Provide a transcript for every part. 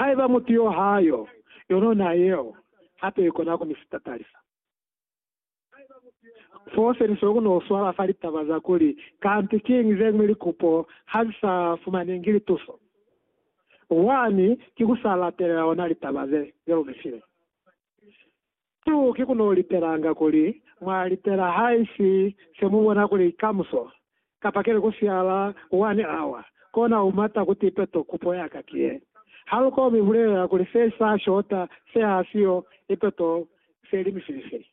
Haiba mutu yo ha yo, yono na yeo hape ikona ku ni sitatalisa. Foo se ni soko ku no swala fa litaba za kuli, Kanti kiñi zeñwi likupo ha zi sa fumanengi lituso? Wani ki ku sa latelela ona litaba ze, ze lu mi file. Tu ki ku no lipelanga kuli mwa lipela haisi se mu bona kuli kamuso, kapa kele ku siala one hour, kona u mata ku tipe to kupo ya ka ki ye. Ha lu komi bulelela kuli se sa shota se ha si yo ipe to se limi fili fili.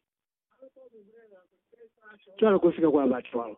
Cwale ku si ke kwa ba cwalo.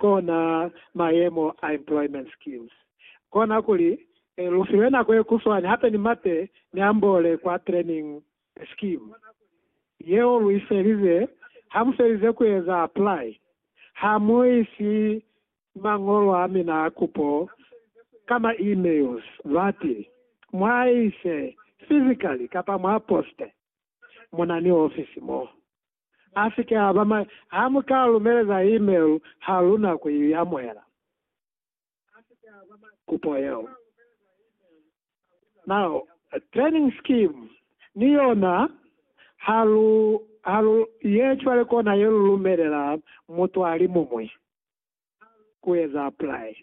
kona mayemo a employment schemes. Kona kuli lu fiwe nako ye kuswani hape ni mate ni ambole kwa training scheme yeo lu ifelize. Ha mu felize ku eza apply, ha mu isi mangolo a mina a kupo ka ma emails bati mwa ise physically kapa mwa poste. Muna ni ofisi mo. A si ke a ba mai. Ha mu ka lumeleza email ha lu na ku i amuhela, kupo yeo. Now, training scheme ni yona, ha lu, ha lu ye cwale kona ye lu lumelela mutu a li mumwi. ku eza apply.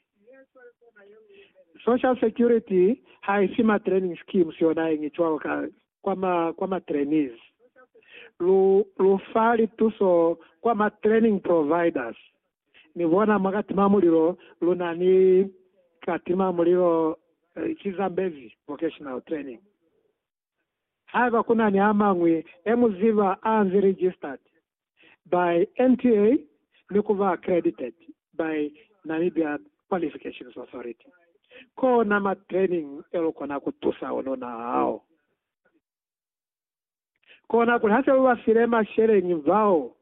Social security ha i si ma training schemes yona yeñi cwalo ka kwa ma kwa ma trainees. Lu lu fa lituso kwa ma training providers. Ni bona mwa katima mulilo lu na ni katima mulilo Chizambezi vocational training. Haiba kunani amañwi e mu ziba aanzi registered by NTA ni kuba accredited by Namibia Qualifications Authority, koona ma training elukona kutusa ununa hao. Koona kuli hase ubafile masheleñi bao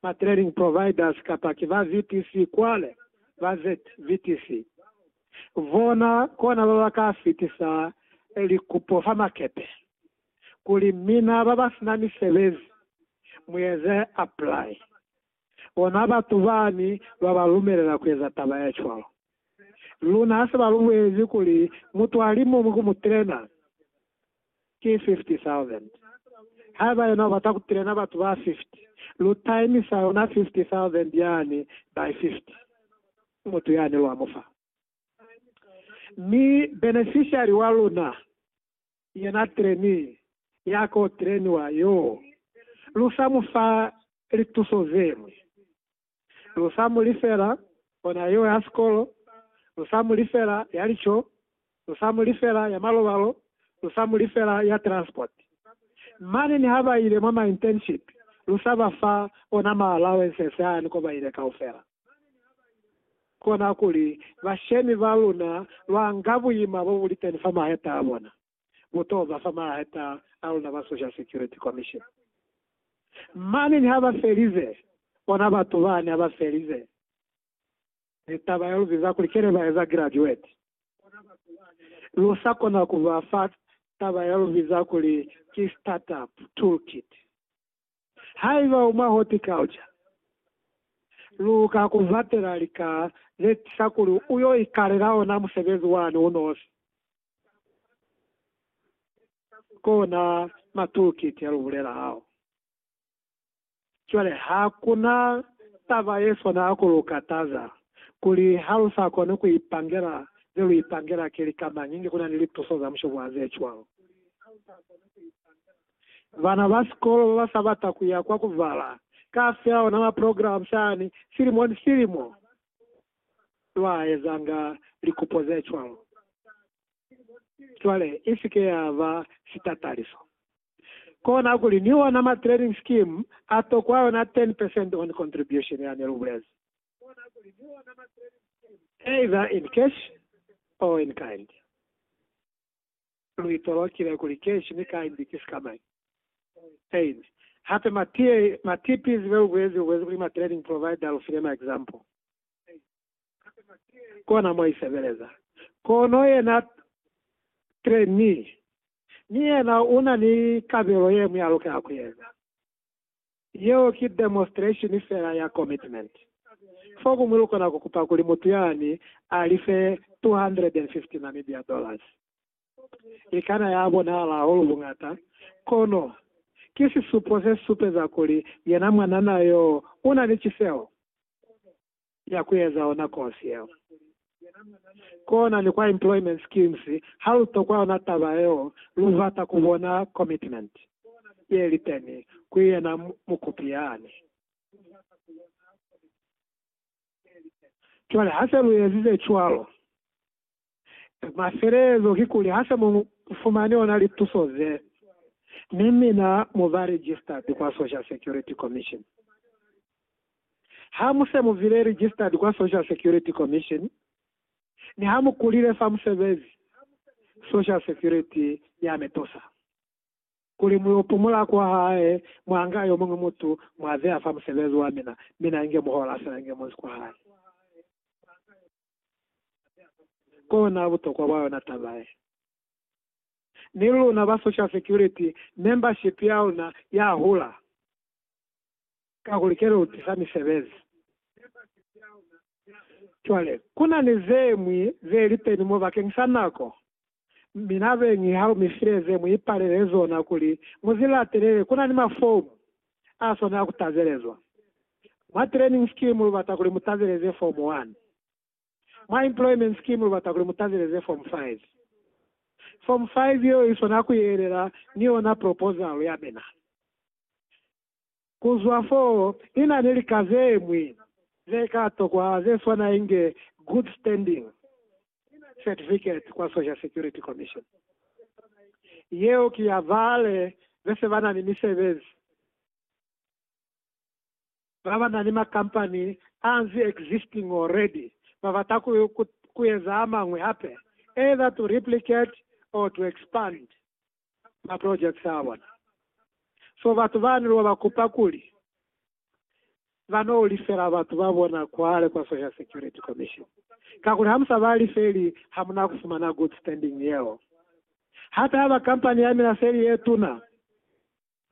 ba training providers kapa ki ba VTC kwale, ba ZVTC. Bona kona ba ba ka fitisa likupo fa makepe kuli mina ba ba sina misebezi mu eze apply. Bona batu bani ba ba lumelela ku eza taba ye cwalo. Luna ha se ba lu bulezi kuli mutu a li muñwi ku mu trainer, ki 50,000. Haiba yena ubata kutrena batu ba 50, lu taimisa yona 50,000 yani by 50. Ki mutu yani lwa mu fa. Mi beneficiary wa luna, yena trainee ya ko treniwa yoo, lu sa mu fa lituso zeñwi. lu sa mu lifela ona yeo ya sikolo, lu sa mu lifela ya lico, lu sa mu lifela ya malobalo, lu sa mu lifela ya transport. Mane niha ba ile mwa ma internship, lu sa ba fa ona ma allowances ani ko ba ile kaufela. Kona kuli bashemi ba luna lwa nga buima bo bu liteni fa maheta a bona. Bo to ba fa mahata a luna ba Social Security Commission. Mane niha ba felize, bona batu bani ha ba felize ni taba ya lu biza kuli kene ba eza graduate. Lu sa kona ku ba fa taba ya lu biza kuli ki startup toolkit. Haiba u mwa horticulture, lu ka ku batela lika ze tisa kuli u yo ikalela ona musebezi wani u nosi. Kona ma toolkit ya lu bulela hao. Cwale ha ku na taba ye swana ha ku lu kataza kuli ha lu sa koni ku ipangela ze lu ipangela ki lika mañi inge ku na ni lituso za mushobo wa ze cwalo. Bana ba sikolo ba ba sa bata ku ya kwa ku bala ka fela ona maprograma sani silimo ni silimo, lwa ezanga likupo ze cwalo. Cwale, i si ke ya ba sitataliso. Kona kuli ni ona matraining scheme a tokwa yona 10 percent on contribution ya ne lu bulezi, either in cash or in kind. Lu itolokile kuli keshi ni kai mbi ki si ka mai. Ain. Hape ma tea, ma TPs be lu bulezi, lu bulezi kuli ma training provider lu file ma example. Ain. Hape ma tea, kona mo i sebeleza. Kono yena trainee ni yena una ni kabelo ye mwi a lukela ku eza. Yeo ki demonstration fela ya commitment. Fokuñwi lukona kukupa kuli mutu yani alife 250 Namibia dollars. Ikana ya bonahala hahulu buñata, kono ki sisupo sesupeza kuli yena mwanana yo una ni ciseho. ya ku eza ona kosi yeo. Kona ni kwa employment schemes ha lu tokwa yona taba yeo, lu bata ku bona commitment ye li teni ku yena mukupi yani. Cwale ha se lu ezize cwalo, Mafelelezo kikuli hase mu fumani ona lituso ze, mi mina mu ba registered kwa Social Security Commission. Ha mu se mu bile registered kwa Social Security Commission, ni ha mu kulile fa musebezi, Social Security ya mi tusa kuli mu yo pumula kwa hae mwa nga yo muñwi mutu mwa beya fa musebezi wa mina, mina inge muhola fela inge munzi kwa hae. Kona butokwa bwa yona taba ye. Ni luna ba social security membership ya luna ya hula, kakuli ke lu tisa misebezi. Cwale, kuna ni zeñwi ze lipeni mo bakeng sa nako Mi na beñi ha lu mi file ze mu ipalele zona kuli mu zi latelele, ku na ni mafomu a sona a ku tabelezwa. Mwa Training Scheme lu bata kuli mu tabeleze Fomu 1. Mwa Employment Scheme lu bata kuli mu tabeleze Fomu 5. Fomu 5 yeo i sona ku yelela ni yona proposal ya mina. Ku zwa fo, ni na ni lika ze ñwi ze ka tokwa ze swana inge Good Standing Certificate kwa Social Security Commission. Yeo ki ya bale be se ba na ni misebezi, ba ba na ni makampani a nzi existing already, ba bata ku, ku, ku eza a mañwi hape, either to replicate or to expand. ma projects a bona. So batu bani lwa ba kupa kuli ba no lifela batu ba bona kwale kwa Social Security Commission. Kakuli ha mu sa ba lifeli ha mu na ku fumana good standing yeo. Hata haba company ya mina seli ye tuna,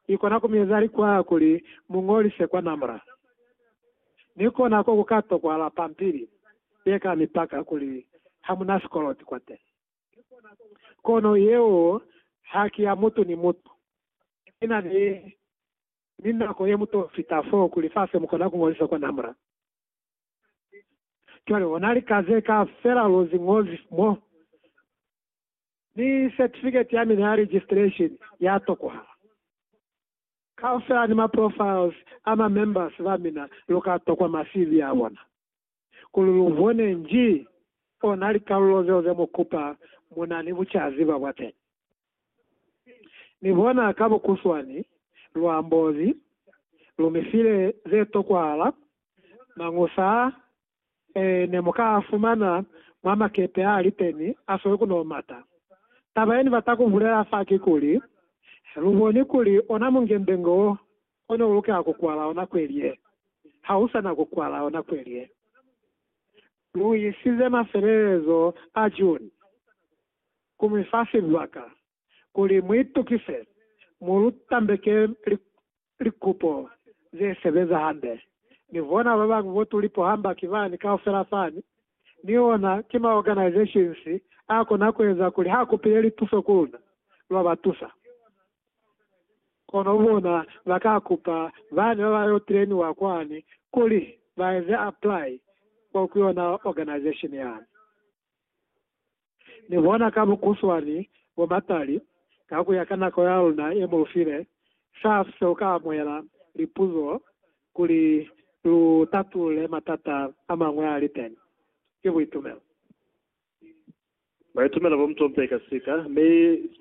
i kona ku mi eza likwaya kuli mu ngolise kwa NAMRA. Ni kona ko ku ka tokwahala pampili ye ka mi paka kuli ha mu na sikoloti kwateni. Kono yeo haki ya mutu ni mutu. Nina ni, ni nako yemuto fita fo ku lifasi mukona kuñozisa kwa NAMRA. Cwale hona lika ze kaufela luzi ñozi mo, ni certificate ya mina ya registration ya tokohala. Kaufela ni ma profiles a ma members ba mina lu ka tokwa ma CV a bona. kuli lu bone nji ona likalulo zeo ze mu kupa mu na ni bucaziba bwa teñi. Ni bona ka bukuswani luambozi lu mi file ze tokwahala, mañusa a ne mu ka a fumana mwa makepe a li teñi a sweli ku no mata. Taba ye ni bata ku bulela fa ki kuli, Lu boni kuli ona mungendenge wo Kono ulukela kukwala ona kweli ye. Ha u sa na kukwala ona kweli ye. Lu isize mafelelezo a June ku mi fa sibaka kuli mu itukise mo lu tambeke likupo ze sebeza hande. Ni bona babañwi bo tu lipo hamba ki bani kaufela fani, ni ona ki ma organizations a kona kueza kuli ha kupile lituso ku luna, lwa ba tusa. Kono bona ba ka kupa bani ba ba yo trainiwa kwani kuli ba eze apply kwa ku yona organization yani. Ni bona ka bukuswani bo matali ka ku ya ka nako ya luna ye mu lu file, saf se u ka amuhela lipuzo kuli lu tatulule matata a mañwi a li teni. Ki buitumelo. Buitumelo bo mutompe ka sika, mi ki